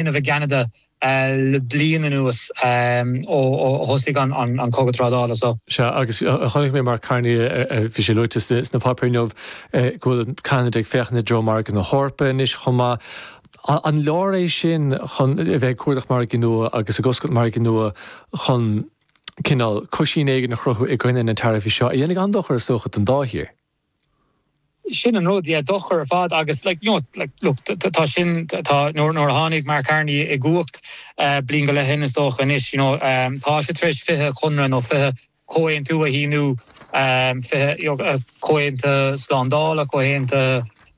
linbh i gCeanada le bliain anuas ó thosaigh an cogadh trádála. Sea, agus chonaic mé Mark Carney, bhí sé luaite sna páipéir inniu, go bhfuil Ceanada ag féachaint i dtreo margadh na hEorpa anois chomh maith. An leor é sin chun a bheith ag cuardach margaí nua agus ag oscailt margaí nua chun, cineál, cuisín éigin a chruthú i gcoinne na dtaraifí seo, a dhéanfaidh an-dochar, is dócha, don dá thír? Sin an rud, yeah, dochar ar fad agus like, you know, like, look, tá sin, tá, nuair a tháinig Mark Carney i gcumhacht bliain go leith ó shin is dócha anois, you know, tá sé tar éis fiche conradh nó fiche comhaontú a shíniú, fiche, you know, comhaontú slándála, comhaontú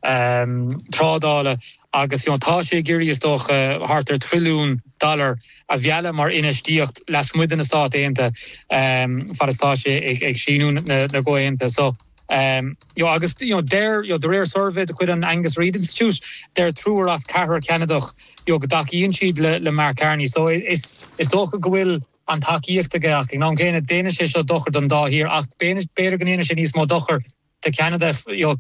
trádála agus tá sé ag iarraidh, is dócha, thart ar thrilliún dollar a mhealladh mar infheistíocht lasmuigh de na Stáit Aontaithe fad is atá sé ag síniú na gcomhaontuithe seo. Agus deir, de réir suirbhé de chuid an Angus Reid Institute, deir triúr as ceathrar Ceanadach go dtacaíonn siad le Mark Carney so is dócha go bhfuil an tacaíocht aige ach ag an am céanna déanfaidh sé seo dochar don dá thír ach b'fhéidir go ndéanfaidh sé níos mó dochair do Cheanada, you know,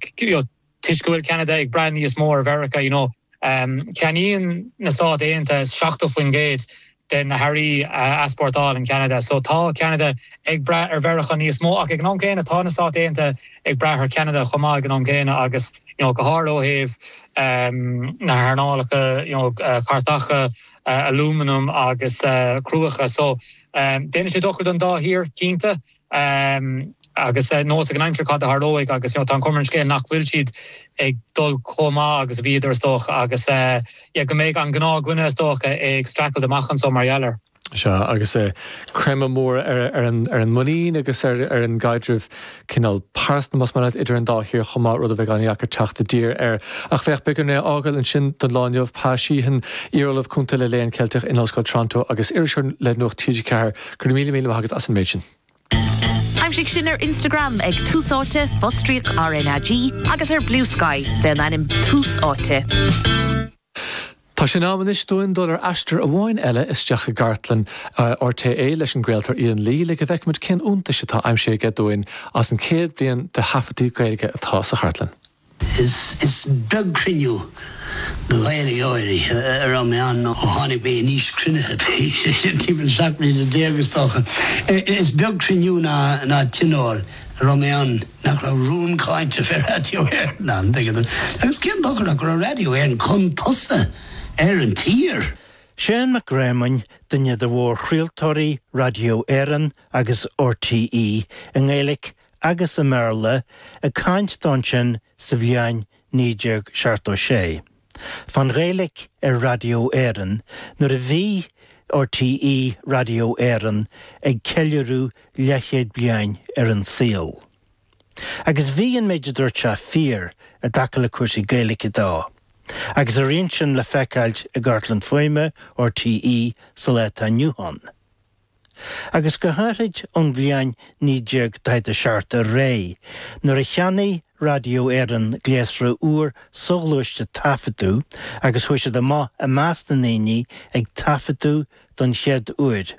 toisc go bhfuil Ceanada ag brath níos mó ar Mheiriceá, you know. Ceannaíonn na Stáit Aontaithe 70% de na hearraí a easpórtálann Ceanada. So tá Ceanada ag brath ar Mheiriceá níos mó ach ag an am céanna tá na Stáit Aontaithe ag brath ar Cheanada chomh maith ag an am céanna agus, you know, go háirithe ó thaobh na hearnálacha, you know, cairteacha, alúmanam agus cruach. So déanfaidh sé dochar don dá thír, cinnte. Ehm, agus, eh, neosfaidh an aimsir cad a tharlóidh agus, you know, tá an chuma ar an scéal nach bhfuil siad ag dul chomh maith agus a bhíodar, is dócha, agus, eh, yeah, go mbeidh an gnáthdhuine, is dócha, ag streachailt amach anseo mar gheall air. Sea, agus, eh, creimeadh mór ar, ar an, ar an muinín agus ar, ar an gcaidreamh cineál pearsanta, más maith leat, idir an dá thír chomh maith, rud a bheidh an-deacair teacht i dtír air. Ach féach, beidh orainn é a fhágáil ansin don lá inniu. Pa Sheehan, iar-ollamh cúnta le Léann Ceilteach in Ollscoil Toronto agus iriseoir le Nuacht TG4, Go raibh míle míle maith agat as an méid sin. Aimsigh sinn ar Instagram ag Tús Áite, fostríoc RnaG, agus ar Bluesky, fé an ainm Tús Áite. Tá sé in am anois dúinn dul ar aistear amháin eile isteach i gcartlann RTÉ leis an gcraoltóir Ian Lee le go bhfeicfimid cé na hiontais atá aimsithe aige dúinn as an 100 bliain de thaifeadtaí Gaeilge atá sa chartlann. Is beag cruinniú de Ghaeil go háirithe a raibh mé ann ó tháinig mé in aois cruinnithe, timpeall 17 bliana is dócha. Is beag cruinniú ná tionól a raibh mé ann nach raibh rún cáinte faoi Raidió Éireann ann, an dtuigeann tú. Agus cén dochar ach go raibh Raidió Éireann chun tosaigh ar an tír? Seán Mac Réamoinn, duine de mhórchraoltóirí Raidió Éireann agus RTÉ i nGaeilge agus i mBéarla ag caint dó ansin sa bhliain 1976 fán Ghaeilig ar Raidió Éireann nuair a bhí RTÉ Raidió Éireann ag ceiliúradh leathchéad bliain ar an saol. Agus bhí an méid a dúirt sé fíor i dtaca le cúrsaí Gaeilge dó. Agus a rian sin le feiceáil i gcartlann fuaime RTÉ sa lá atá inniu ann. agus go háithrid ón bhliain 1947 ar aghaidh, nuair a cheannaigh Raidió Éireann gléasra úr soghluaiste taifeadadh agus chuaigh siad amach i measc na ndaoine ag taifeadadh don chéad uair,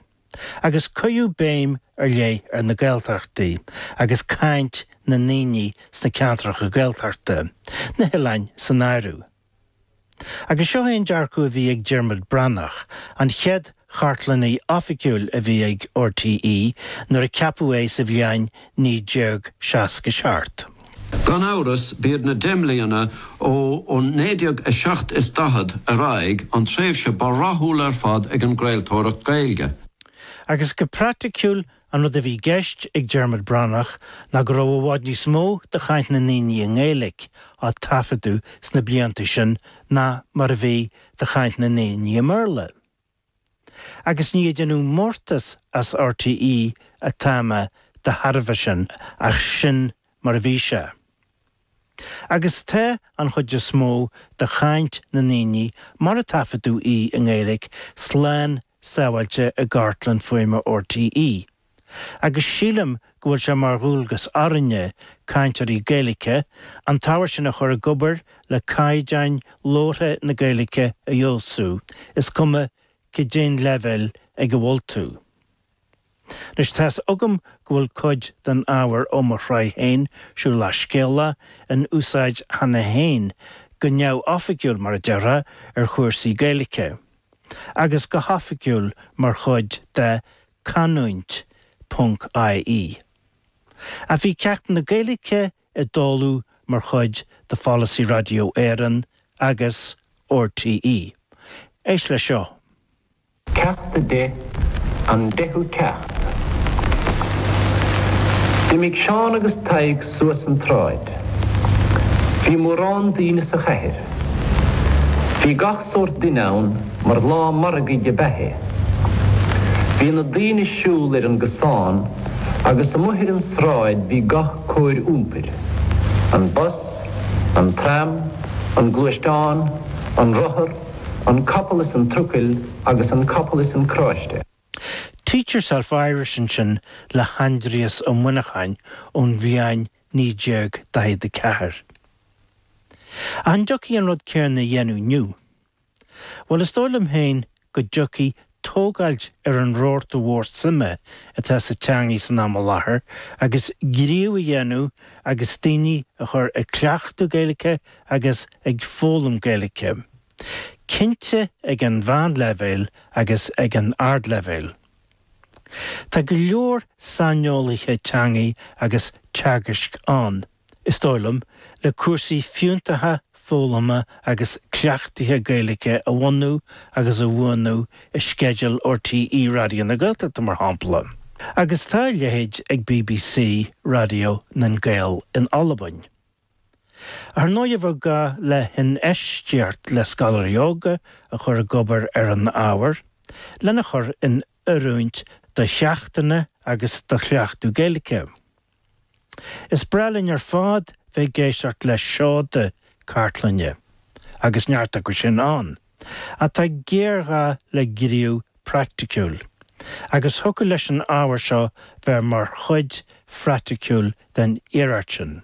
agus cuireadh béim ar leith ar na Gaeltachtaí agus caint na ndaoine sna ceantracha Gaeltachta, na hoileáin san áireamh. Agus seo é an dearcadh a bhí ag Diarmuid Breathnach, an chéad chartlannaí oifigiúil a bhí ag RTÉ nuair a ceapadh é sa bhliain 1967. Gan amhras, b'iad na deich mbliana ó 1947 ar aghaidh an tréimhse ba rathúla ar fad ag an gcraoltóireacht Gaeilge. Agus go praiticiúil An rud a bhí i gceist ag Diarmuid Breathnach ná go raibh i bhfad níos mó de chaint na ndaoine i nGaeilig á taifeadadh sna blianta sin ná mar a bhí de chaint na ndaoine i mBéarla. Agus ní ag déanamh mórtas as RTÉ atá mé de thairbhe sin ach sin mar a bhí sé. Agus tá an chuid is mó de chaint na ndaoine, mar a taifeadadh í i nGaeilig, slán sábháilte i gcartlann fuaime RTÉ, agus sílim go bhfuil sé mar dhualgas orainne, cainteoirí Gaeilge, an t-ábhar sin a chur ag obair le caighdeán labhartha na Gaeilge a fheabhsú, is cuma caidé an leibhéal ag a bhfuil tú. Anois, tá's agam go bhfuil cuid den ábhar ó mo shraith féin, Siúlach Scéalach, in úsáid cheana féin, go neamhoifigiúil, mar a déarfá, ar chúrsaí Gaeilge, agus go hoifigiúil mar chuid de Canúint.ie. Ach bhí ceacht na Gaeilge i dtólamh mar chuid de pholasaí Raidió Éireann agus RTÉ. Éist leis seo. Ceacht 10 An Deichiú Ceacht D'imigh Seán agus Tadhg suas an tsráid. Bhí mórán daoine sa chathair. Bhí gach sórt duine ann mar lá margaidh ab ea é. Bhí na daoine ag siúl ar an gcosán agus amuigh ar an sráid bhí gach cóir iompair, an bus, an tram, an gluaisteán, an rothar, An capall is an trucail agus an capall is an cráiste. Teach Yourself Irish ansin le hAindrias Ó Muineacháin ón bhliain 1944. Ach an dtiocfadh an rud céanna a dhéanamh inniu? Bhuel, is dóigh liom féin go dtiocfadh tógáilt ar an rabharta mhór suime atá sa teangaidh san am i láthair agus gníomh a dhéanamh agus daoine a chur ag cleachtadh Gaeilge agus ag foghlaim Gaeilge, cinnte ag an mheánleibhéal agus ag an ardleibhéal. Tá go leor saineolaithe teangaidh agus teagaisc ann. is dóigh liom, le cúrsaí fiúntacha foghlama agus cleachtaithe Gaeilge a bhunú agus a bhuanú i sceideal RTÉ Raidió na Gaeltachta, mar shampla. Agus tá a leithéid ag BBC Radio nan Gàidheal in Albain. Ar ndóigh, bheadh gá le hinfheistíocht le scoláirí óga a chur ag obair ar an ábhar, lena chur in oiriúint do cheachtanna agus do chleachtadh Gaeilge. Is breá linn ar fad bheith ag éisteacht le seoda cartlainne, agus neart acu sin ann, ach tá géarghá le gníomh praiticiúil, agus thiocfadh leis an ábhar seo bheith mar chuid phraiticiúil den iarracht sin.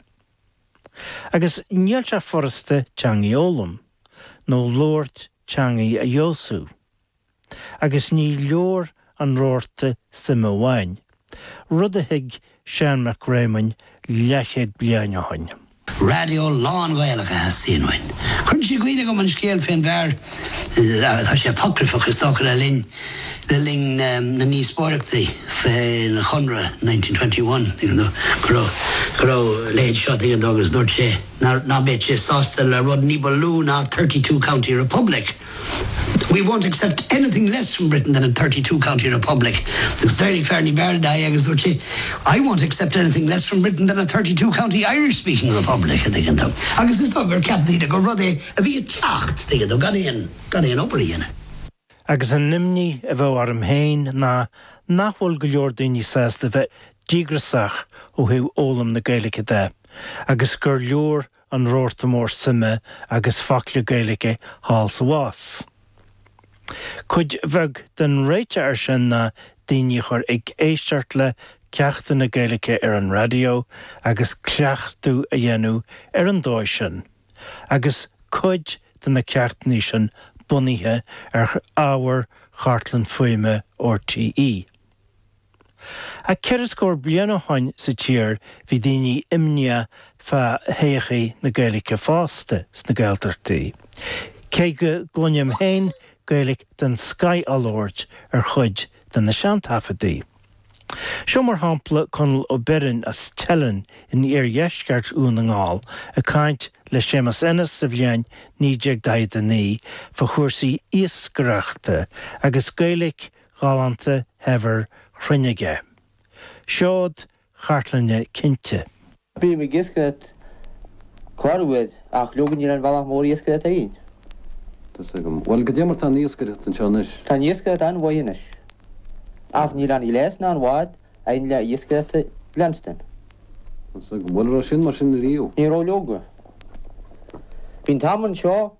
Agus níl sé furasta teangaidh a fhoghlaim, nó labhairt teangaidh a fheabhsú. agus ní leor an rabharta suime amháin, rud a thuig Seán Mac Réamoinn leathchéad bliain ó shin. Raidió lán-Ghaelach a theastaíonn uainn. Cuireann sé i gcuimhne dom an scéal faoin bhfear, tá sé apocryphach is dócha, le linn, le linn na ndíospóireachtaí faoin Chonradh in nineteen twenty one, you know, go raibh, go raibh a leithéid seo, tuigeann tú, agus dúirt sé ná beadh sé sásta le rud ní ba lú ná thirty two county republic. We won't accept anything less from Britain than a thirty two county republic. Agus d'éirigh fear níb fhearr ná é agus dúirt sé, I won't accept anything less from Britain than a thirty two county Irish speaking republic, a dtuigeann tú. Agus is dóigh gur cheap daoine gur rud é a bhí ag teacht, tuigeann tú, gan aon, gan aon obair a dhéanamh. Agus an imní a bheadh orm féin ná nach bhfuil go leor daoine sásta bheith díograsach ó thaobh fhoghlaim na Gaeilge de agus gur leor an rabharta mór suime agus focla Gaeilge thall is abhus. Cuid bheag den réiteach air sin ná daoine a chur ag éisteacht le ceachtanna Gaeilge ar an raidió agus cleachtadh a dhéanamh ar an dóigh sin, agus cuid de na ceachtanna sin bunaithe ar ábhar Chartlann Fuaime RTÉ. Ach ceithre scór bliain ó shoin sa tír bhí daoine imníoch fa thodhchaí na Gaeilice fosta sna Gaeltachtaí, cé go gcluinim féin Gaeilic den scoith á labhairt ar chuid de na seantaifeadaí. Seo mar shampla Conall Ó Beirn as Teileann in iardheisceart Dhún na nGall ag caint le Séamus Ennis sa bhliain 1949 fa chúrsaí iascaireachta agus Gaeilic ghalánta shaibhir chruinn aige. Seod cartlainne cinnte. Bím ag iascaireacht corruair, ach leoga níl aon bhealach mór iascaireacht ann. Tá 's agam. Bhuel, goidé mar tá an iascaireacht anseo anois. Tá an iascaireacht an-mhaith anois. Ach níl aon ghléas ná aon bhád ann le iascaireacht a leanstan. Tá 's agam. Bhuel, raibh sin mar sin riamh. Ní raibh leoga. Bhí an t-am anseo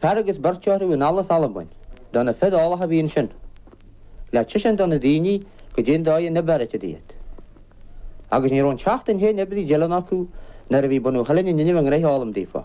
Fear agus beirt a tugadh anall as Albain, de na fir eolacha a bhí ansin, le teiseáint do na daoine goidé an dóigh a n-oibrítear iad. Agus ní raibh aon tseachtain féin oibrithe i dTeileann acu nuair a bhí bunadh Theilinn in innimh a ngraithe a fhoghlaim daofa.